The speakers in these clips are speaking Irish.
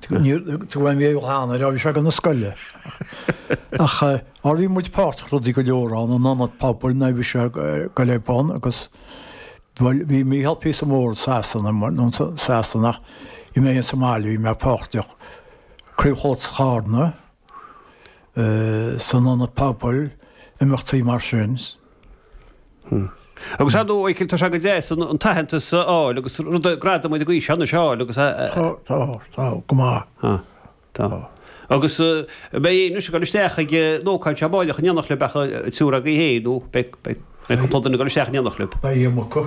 Tugaim mé glan nuair a bhí siad ag dul na scoile. Ach má bhí muid páirteach rudaí go leor ann an ionad pobail nuair a bhí sé ag dul ar bun agus bhuel bhí Mícheál píosa mór Sasana mar nó Sasana bhí mé sa mbaile bhí mé páirteach Craobh Chomhaltas Charna san ionad pobail, imeachtaí mar sin. Agus ar ndóigh, Mhichael, tá sé go deas an t-aitheantas a fháil agus rud, gradam den aois anois a fháil agus a. Tá, tá, go maith. Tá, tá. Agus beidh Éilís ag dul isteach ag an ócáid seo baileach in éineacht libh ach an triúr agaibh féin nó beidh, beidh cúpla duine ag dul isteach in éineacht libh? Beidh Éamon acu.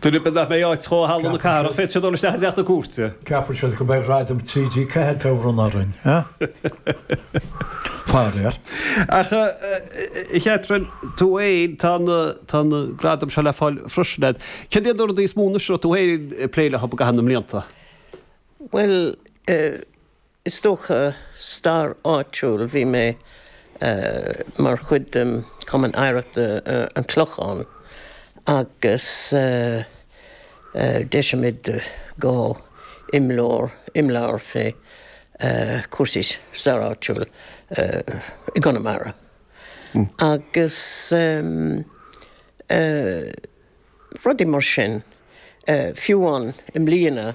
Duine ar bith nach mbeidh áit dó i Halla na Cathrach, féadfaidh sé dul isteach i dTeach na Cúirte. Ceapann siad go mbeidh Gradam TG4 dá bhronnadh orainn, faraor. Ach, a Chatherine, tú fhéin, tá na, tá na gradaim seo le fáil freisin agat. Céard iad na rudaí is mó anois a raibh tú fhéin ag plé leo i gcaitheamh na mblianta? Bhuel, eh. Is dócha, stair áitiúil, bhí mé mar chuid de Chumann Oidhreachta an Chlocháin agus d'eisigh muid dhá imleabhar, imleabhar fé chúrsaí stair áitiúil i gConamara agus rudaí mar sin, fiú amháin i mbliana.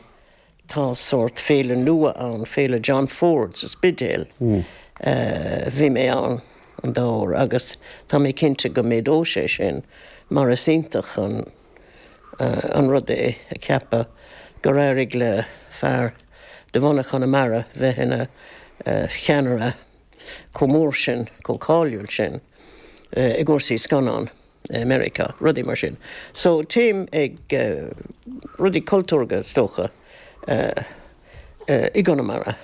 Tá sórt féile nua ann, Féile John Ford sa Spidéal. Bhí mé ann an dá uair agus tá mé cinnte go méadóidh sé sin mar is iontach an rud é a cheapadh gur éirigh le fear de bhunadh Chonamara bheith ina cheannaire chomh mór sin, chomh cáiliúil sin i gcúrsaí scannán. i Meiriceá, rudaí mar sin. So téim ag rudaí cultúrtha is dócha i gConamara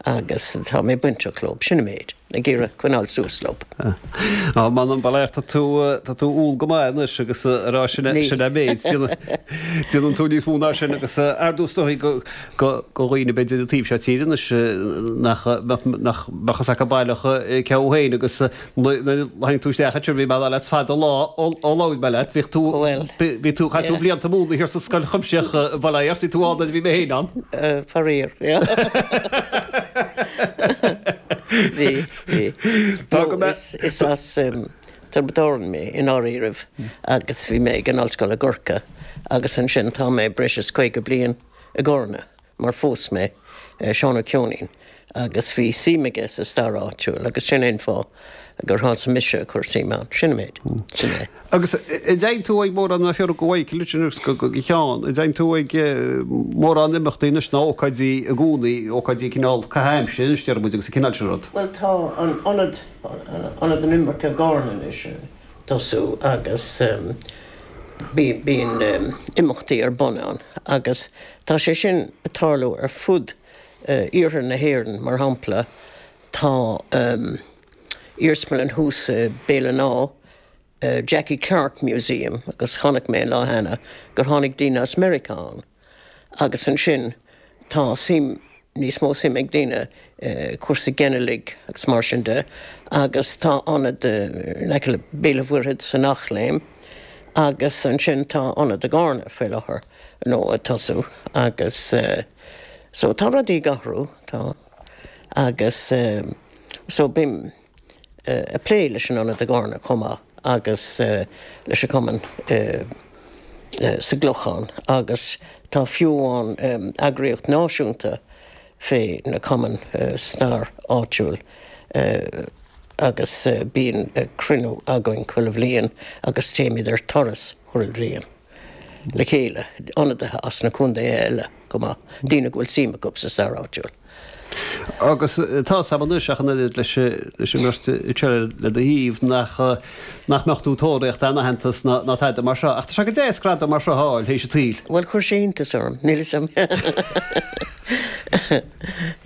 agus tá mé bainteach leo, sin an méid, ag iarraidh coinneáil suas leo. Á, m'anam, ba léir, tá tú, tá tú umhal go maith anois agus ag rá sin, sin an méid, déanann tú níos mó ná sin agus ar dtús is dóigh go, go, go dhaoine a bheidh ar an taobh seo tíre anois nach, nach, nach, nach mbeadh a fhios acu baileach cé thú féin agus. Tháinig tú isteach anseo, bhí mé ag rá leat fada an lá ó labhair mé leat, bhíodh tú, bhí tú, chaith tú blianta ag múineadh thiar sa Scoil Chuimsitheach baileach, bhí tú ann nuair a bhí mé féin ann. Faraor, bhí, bhí. Tá go maith. Is as Tiobraid Árann mé i ndáiríribh agus bhí mé ag an Ollscoil i gCorcaigh agus ansin tá mé breis is caoga bliain i gCarna. mar phós mé Seán Ó Ceoinín agus bhí suim aige sa stair áitiúil agus sin é an fáth gur thosaigh mise ag cur suime ann. Sin an méid. Sin é. Agus an dtéann tú ag mórán an fíor go bhfaighidh tú litir anois go go go cheann, an dtéann tú ag mórán imeachtaí anois ná ócáidí i gcónaí, ócáidí cineál caitheamh aimsire anois deir muid agus an cineál sin rud? Bhuel tá an ionad, ionad na himirce i gCárna anois ag tosú agus bí bíonn imeachtaí ar bun ann agus Tá sé sin ag tarlú ar fud iarthar na hÉireann, mar shampla tá iarsmalann thuas i Béal an Átha, Jackie Clarke Museum agus chonaic mé an lá cheana gur tháinig daoine as Meiriceá ann agus ansin tá suim, níos mó suim ag daoine cúrsaí ginealaigh agus mar sin de agus tá ionad in aice le Béal an Mhuirthead san Eachléim agus ansin tá ionad i gCárna faoi láthair nó ag tosú agus so tá rudaí ag athrú tá agus so bím ag plé leis an Ionad i gCarna chomh maith agus leis an gcumann sa gClochán agus tá fiú amháin eagraíocht náisiúnta fé na cumainn stair áitiúil agus bíonn cruinniú againn chuile bhliain agus téimid ar turas chuile bhliain. le chéile, ionadaithe as na contaetha eile chomh maith, daoine go bhfuil suim acu sa stair áitiúil. Agus tá a fhios a'm anois ach an oiread leis an mbeirt seo le do thaobh, nach mbeadh tú ag tóraíocht aon aitheantas ná tada mar seo. Ach tá sé go deas gradam mar seo a fháil théis a tsaoil. Bhuel, chuir sé iontas orm, níl 'fhios a'm.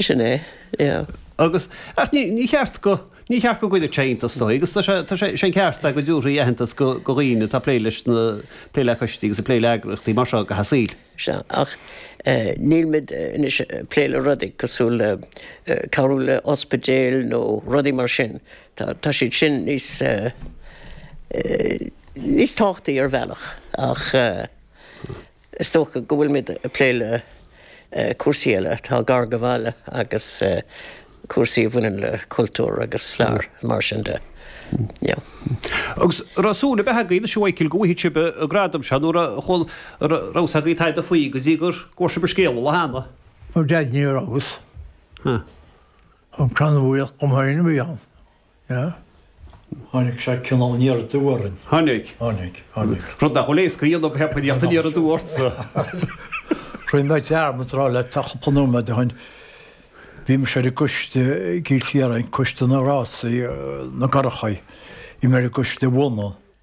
Sin é, yeah. Agus, ach ní ceart go. Ní ceart go gcuirfeadh sé iontas oraibh agus tá sé, tá sé, sé an ceart go dtabharfaí aitheantas go dhaoine atá ag plé leis na, ag plé le coistí agus ag plé le eagraíochtaí mar seo i gcaitheamh a saoil. Sea, ach nílimid anois ag plé le rudaí cosúil le cabhrú le ospidéil nó rudaí mar sin. Tá, tá siad sin níos, níos tábhachtaí ar bhealach ach, Is dócha go bhfuilimid ag plé le cúrsaí eile atá gar do bhaile agus cúrsaí a bhaineann le cultúr agus stair, mar sin de. Agus raibh súil ar bith agaibh, anois a Mhichíl, go bhfaighfeadh sibh an gradam seo nó raibh fhios agaibh tada faoi go dtí gur airigh sibh an scéal an lá cheana? Ó deimhin ní raibh fhios. An crann a bhuíoch dom féin a bhí ann. Yeah. Tháinig sé cineál aniar aduaidh orainn. Tháinig. Tháinig. Tháinig. Rud nach bhfuil éasca a dhéanamh teacht aniar aduaidh ortsa. Rinne mé dearmad a rá leat cúpla nóiméad ó shoin. Bhí mise ar an gcoiste i gCill Chiaráin, coiste na rásaí, na gcurrachaí. Bhí mé ar an gcoiste i bhFionnadh.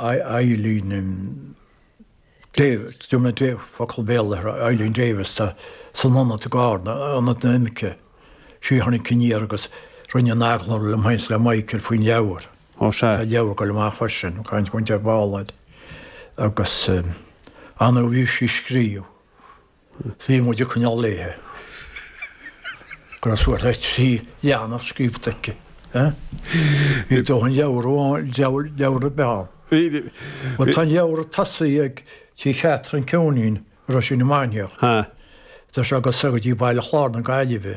Eileen Davis, Diarmaid Davy, focal Béarla ar Eileen Davis, tá san ionad i gCarna, Ionad na nImirceach. Sí a tháinig aniar agus rinne an t-agallamh liom féin is le Michael faoin leabhar. Ó sea. Tá leabhar ag dul amach freisin, Caint Mhuintir Bhaloir, agus an uair a bhí sí ag scríobh, Bhí muid ag coinneáil léithe go raibh suas le trí leathanach scríobhta aici. Bhí dóthain leabhar ann, leabhar ar bith ann. Bhuel tá an leabhar ag tosaí ag Tigh Chatherine Couneen, Roisín na Mainiach. Tá sé ag dul soir go dtí Baile Chlár na Gaillimhe.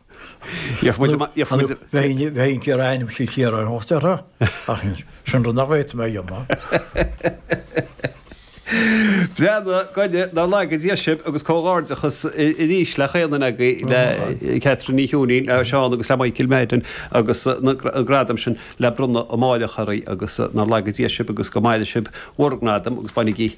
Bheinn ar ainm Chill Chiaráin ag trácht orthu ach sin rud nach bhféadfaidh mé a dhéanamh. Breathnú gainne nár laga Dia sibh agus comhghairdeachas aríst le chaon duine agaibh le Catherine Ní Chiúinín, le Seán agus le Michael Madden agus an gradam sin le bronnadh amáireach oraibh agus nár laga Dia sibh agus go maire sibh bhur ngradam agus bainigí